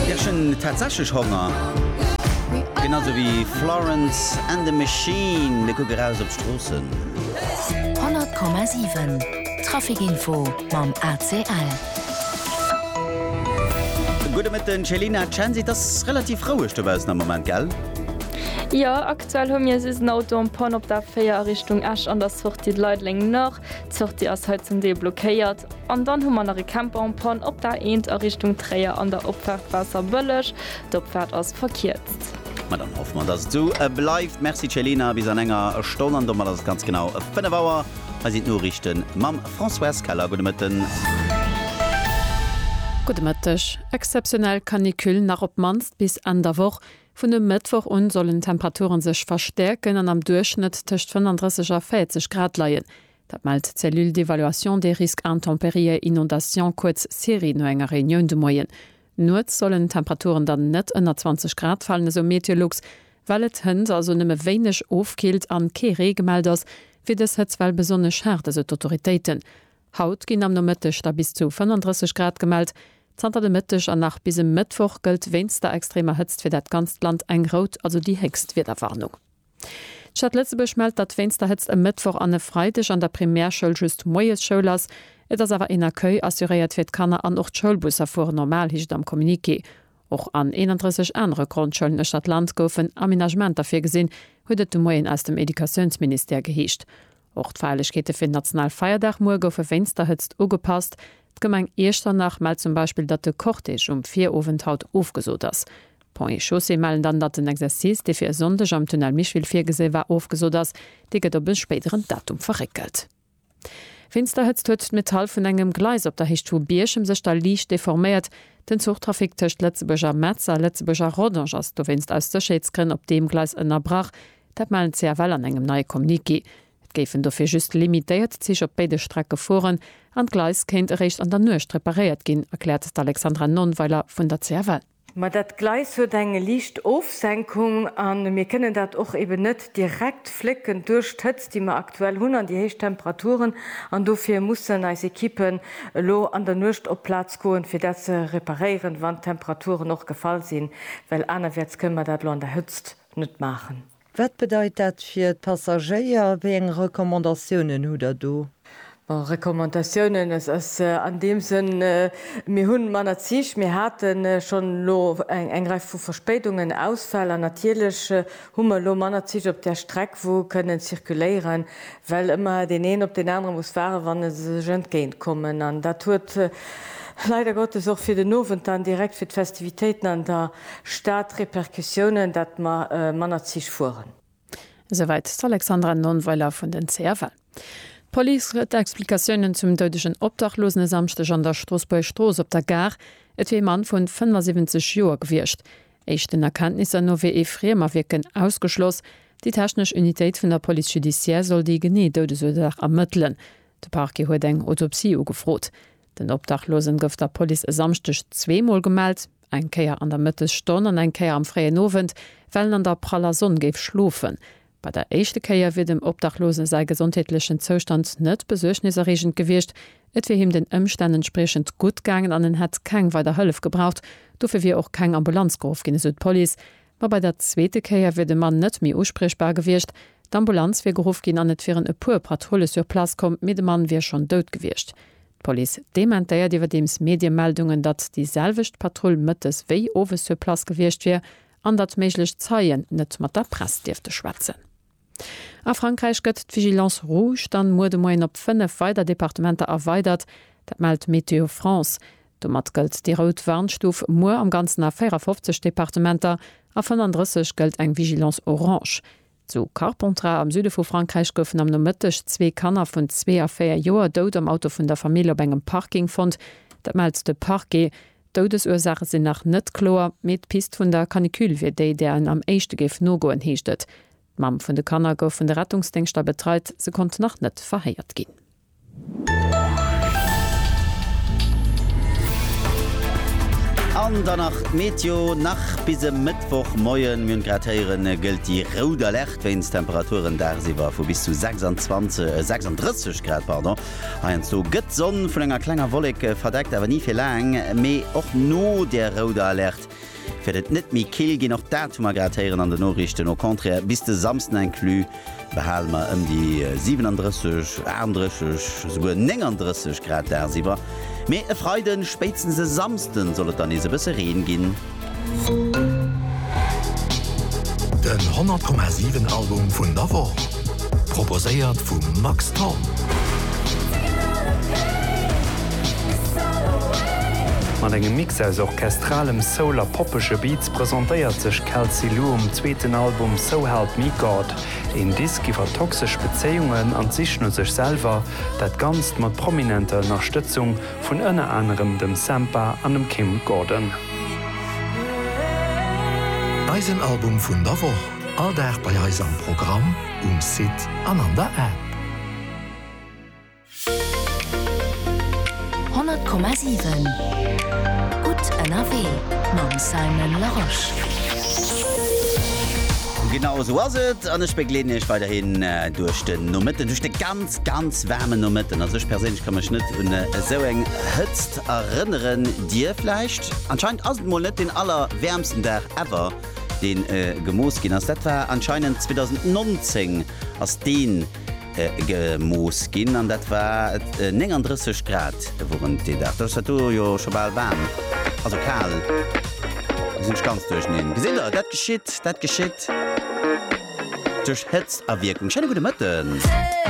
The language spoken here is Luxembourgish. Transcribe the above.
Ech hunn tatsächlech Honger, genau sou wéi Florence and the Machine. Mir kucke raus op d'Stroossen. 100,7 Traficinfo mam ACL. Gudde Mëtten Céline, Chancy. Et ass relativ roueg dobaussen am Moment, gell? Jo, aktuell hu mir just en Auto en panne op der 4 a Richtung Esch an der Sortie de Leideleng Nord. D'Sortie ass hei zum Deel blockéiert. An dann hu mer nach e Camp en panne op der A1 a Richtung Tréier an der Opfaart Waasserbëlleg. D'Opfaart ass verkierzt. Ma dann hoffe mer, dass et esou bleift. Merci Céline a bis an enger Stonn. An domat ass et ganz genau 5 Auer. Hei sinn d'Noriichte mam Françoise Keller. Gudde Mëtten. Gudde Mëtteg. Exzeptionell Canicule nach op d'mannst bis Enn der Woch. Vun e Mëttwoch un sollen d'Temperature sech verstäerken an am Duerchschnëtt tëscht 35 a 40 Grad leien. Dat mellt d'Cellule d'évaluation des risques intempérieux inondations, kuerz CERI, no enger Reunioun de Moien. Nuets sollen d'Temperaturen dann net ënner 20 Grad falen, esou Meteolux. Well et hënt also nëmme wéineg ofkillt an kee Ree gemellt ass, wier dës Hëtztwell besonnesch haart, esou d'Autoritéiten. Haut ginn am Nomëtteg da bis zu 35 Grad gemellt. Zanter de Mëtteg an nach bis e Mëttwoch gëllt wéinst der extremer Hëtzt fir dat ganzt Land eng rout, also déi héchst Wiederwarnung. D'Stad Lëtzebuerg mellt, datt wéinst der Hëtzt e Mëttwoch an e Freideg an der Primärschoul just moies Schoul ass. Et ass awer een Accueil assuréiert fir d'Kanner an och d'Schoulbusser fueren normal, heescht et am Communiqué. Och an 31 anere Grondschoulen uechter d'Land goufen Amenagementer virgesinn, huet et de Moien aus dem Educatiounsministère geheescht. Och d'Feierlechkeete fir den nationale Feierdag muer goufe wéinst der Hëtzt ugepasst. D'Gemeng Iechternach mellt zum Beispill, datt de Cortège um Virowend haut ofgesot ass. Ponts et Chaussées mellen dann, datt den Exercice, dee fir e Sonndeg am Tunnel Micheville virgesi war, ofgesot ass. Dee gëtt op e spéideren Datum verréckelt. Wéinst der Hëtzt huet d'Metall vun engem Gleis op der Héicht vu Bierchem sech da liicht deforméiert. Den Zuchtrafic tëscht Lëtzebuerg a Metz a Lëtzebuerg a Rodange ass dowéinst aus Sécherheetsgrënn op deem Gleis ënnerbrach. Dat melden d'CFL an engem neie Communiqué. Et géifen dofir just limitéiert Zich op béide Strecke fueren an d'Gleis kéint eréischt an der Nuecht reparéiert ginn, erkläert d'Alexandra Nonnweiler vun der CFL. Ma dat Gleis huet eng liicht Ofsenkung a mir kënnen dat och eben net direkt flécken duerch d'Hëtzt, déi mer aktuell hunn an déi héich Temperaturen. An dofir mussen eis Ekippen elo an der Nuecht op d'Plaz goen, fir dat ze reparéieren, wann d'Temperaturen och gefall sinn, well anerwäerts kënne mer dat elo an der Hëtzt, net maachen. Wat bedeit dat fir d'Passagéier? Wéi eng Recommandatiounen hutt Der do? Bon, Recommandatiounen, et ass an deem Sënn, mir hunn manner Zich, mir hate schonn elo eng Rei vu Verspéidungen, Ausfäll an natierlech hu mer elo manner Zich op där Streck wou kënnen zirkuléieren, well ëmmer deen een op deen anere muss waarden, wann e se sech entgéint kommen. An dat huet leider Gottes och fir den Owend dann direkt fir d'Festivitéiten an der. Staat Repercussiounen, datt mer manner Zich fueren. Esouwäit d'Alexandra Nonnweiler vun den CFL. D'Police huet Explikatiounen zum doudegen Obdachlosen e Samschdeg an der Stroossbuerger Strooss op der Gare. Et wier ee Mann vun 75 Joer gewiescht. Éischten Erkenntnisser no wier ee Friemerwierken ausgeschloss. Déi technesch Unitéit vun der Police judiciaire soll déi genee Doudesursaach ermëttelen. De Parquet huet eng Autopsie ugefrot. Den Obdachlosen gouf der Police e Samschdeg zwee Mol gemellt, eng Kéier an der Mëttesstonn an eng Kéier am fréien Owend, well en an der praller Sonn géif schlofen. Bei der éischte Kéier wier dem Obdachlose säi gesondheetlechen Zoustand net besuergniserreegend gewiescht. Et wier him den Ëmstänn entspriechend gutt gaangen an en hätt keng weider Hëllef gebraucht. Dofir wier och keng Ambulanz geruff ginn, esou d'Police. Ma bei der zweete Kéier wier de Mann net méi uspriechbar gewiescht. D'Ambulanz wier geruff ginn an et wieren e puer Patrulle sur place komm, mee de Mann wier schonn dout gewiescht. D'Police dementéiert iwwerdeems Mediemeldungen, datt déi selwecht Patrull mëttes wéi owes sur place gewiescht wier an datt méiglech Zeien net mat der Press dierfte schwätzen. A Frankräich gëtt d'Vigilance rouge dann muer de Moien op 5 weider Departementer erweidert. Dat mellt Météo France. Domat gëllt déi rout Warnstuf muer am Ganzen a 54 Departementer, a 35 gëllt eng Vigilance orange. Zu Carpentras am Süde vu Frankräich goufen am Nomëtteg zwee Kanner vun zwee a véier Joer dout am Auto vun der Famill op engem Parking fonnt. Dat mellt de Parquet. D'Doudesursaache sinn nach net kloer, mee d'Pist vun der Canicule wier déi, där en am éischte géif nogoen, heescht et. D'Mamm vun de Kanner gouf vun de Rettungsdéngschter betreit, se konnt nach net verhéiert ginn. An dann nach d'Meteo, nach bis e Mëttwochmoien, mir hunn et grad héieren, gëllt déi rout Alerte wéinst Temperaturen dagsiwwer vu bis zu 26, 36 Grad, pardon. Heiansdo gëtt d'Sonn vun enger klenger Wollek verdeckt, awer ni fir laang. Mee och no der rouder Alerte wäert et net méi kill ginn. Och dat hu mer grad héieren an den Noriichten. Au contraire, bis de Samsden inclus behale mer ëm déi 37, 38, esouguer 39 Grad dagsiwwer. Mee e Freiden, spéitstens e Samsden soll et dann nees e bësse Reen ginn. Den 100,7 Album vun der Woch, proposéiert vum Max Thorn. Mat engem Mix aus orchestralem Soul a poppege Beats presentéiert sech Kelsey Lu um zweeten Album So Help Me God. Een Disk iwwer toxesch Bezéiungen an d'Sich no sech selwer, dat Ganzt mat prominenter Ënnerstëtzung vun ënner anerem dem Sampha an dem Kim Gordon. Eisen Album vun der Woch, all Dag bei eis am Programm, um Site an an der App. 100,7 Gutt ënnerwee mam Simon Larosche. Genau esou ass et, an ech begleeden iech weiderhin duerch den Nomëtten, duerch de ganze. Ganz waarmen Nomëtten, also ech perséinlech ka mech net un esou eng Hëtzt erënneren, dir vläicht? Anscheinend ass et mol net deen aller wäermsten Dag ever deen gemooss ginn ass. Dat war anscheinend 2019 ass deen gemooss ginn an dat war 39 Grad wurent dee Dag. Da ass dat do jo scho bal waarm, also kal, elo sinn ech ganz duerchneen. Gesitt der, dat geschitt, dat geschitt duerch Hëtztawierkung. Schéine gudde Mëtten.